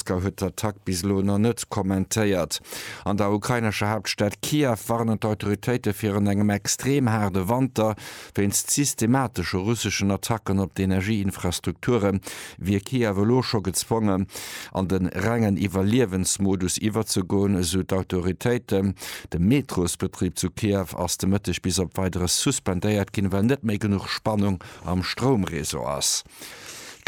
Moskau huet d'Attack bis elo nach net kommentéiert. An der ukrainescher Haaptstad Kiew warnen d'Autoritéite virun engem extrem haarde Wanter. Wéinst systematesche russeschen Attacken op d'Energieinfrastrukture wier Kiew elo scho gezwongen, an de rengen Iwwerliewensmodus iwwerzegoen, esou d'Autoritéiten. De Metrosbetrib zu Kiew ass de Mëtteg bis op Weideres suspendéiert ginn, well net méi genuch Spannung am Stroumreseau ass.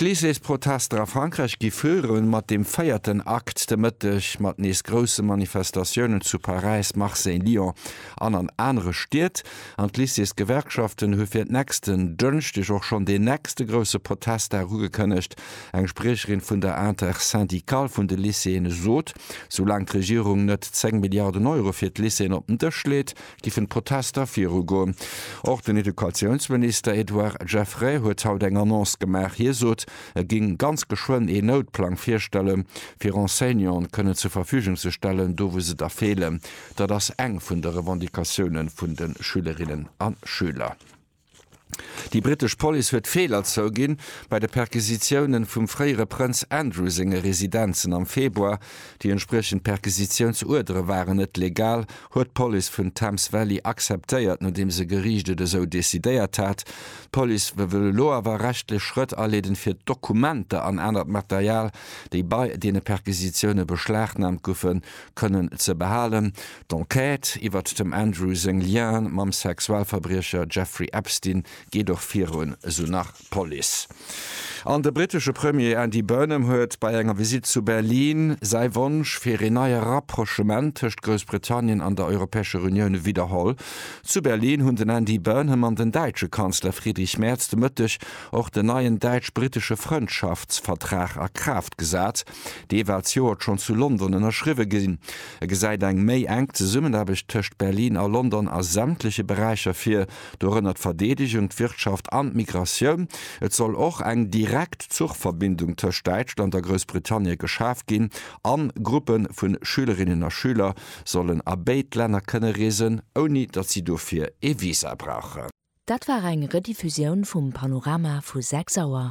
D'Lycéesprotester a Frankräich gi viru mat dem véierten Akt de Mëtteg, mat nees grousse Manifestatiounen zu Paräis, Marseille, Lyon an an anere Stied. An d'Lycéesgewerkschaften hu fir nächsten Dënschdeg och schonn deen nächste grousse Protestdag ugekënnegt. Eng Spriecherin vun der Intersyndicale vun de Lycéeën sot, soulaang d'Regierung net 10 Milliarden Euro fir d'Lycéeën op den Dësch leet, giffen d'Protester virugoen. Och den Educatiounsminister Edouard Geffray huet haut eng Annonce gemaach. Hie sot, e géing ganz geschwënn een Noutplang virstelle fir Enseignanten kënnen zur Verfügung ze stellen, do wou se der feelen. Dat ass eng vun de Revendicatioune vun de Schülerinnen a Schüler. Déi brittesch Police huet Feeler zouginn bei de Perquisitiounen vum fréiere Prënz Andrew senge Residenzen am Februar. Déi entspriechend Perquisitiounsuerdere waren net legal, huet d'Police vun Thames Valley akzeptéiert, nodeems e Geriicht et esou decidéiert hat. D'Police wëll elo awer rechtlech Schrëtt aleeden, fir d'Dokumenter an anert Material, déi bei deene Perquisitioune beschlagnahmt goufen, kënnen ze behalen. D'Enquête iwwert dem Andrew seng Liens mam Sexualverbriecher Jeffrey Epstein geet och virun, esou nach d'Police. An de brittesche Premier Andy Burnham huet bei enger Visitt zu Berlin säi Wonsch fir een neie Rapprochement tëscht Groussbritannien an der Europäescher Unioun widderholl. Zu Berlin hunn den Andy Burnham an den däitsche Kanzler Friedrich Merz de Mëtteg och den neien däitsch-brittesche Frëndschaftsvertrag a Kraaft gesat. Dee war d'Joert schonn zu London ënnerschriwwe ginn. E gesäit eng méi enk Zesummenaarbecht tëscht Berlin a London a sämtleche Beräicher vir, dorënner d'Verdeedegung, d'Wirtschaft an d'Migratioun. Et soll och eng direkt Zuchverbindung tëscht Däitschland a Groussbritannie geschaf ginn a Gruppe vu Schülerinnen a Schüler sollen a béid Länner kënne reesen, ouni datt si dofir ee Visa brauchen. Dat war eng Rediffusioun vum Panorama vu 6 Auer.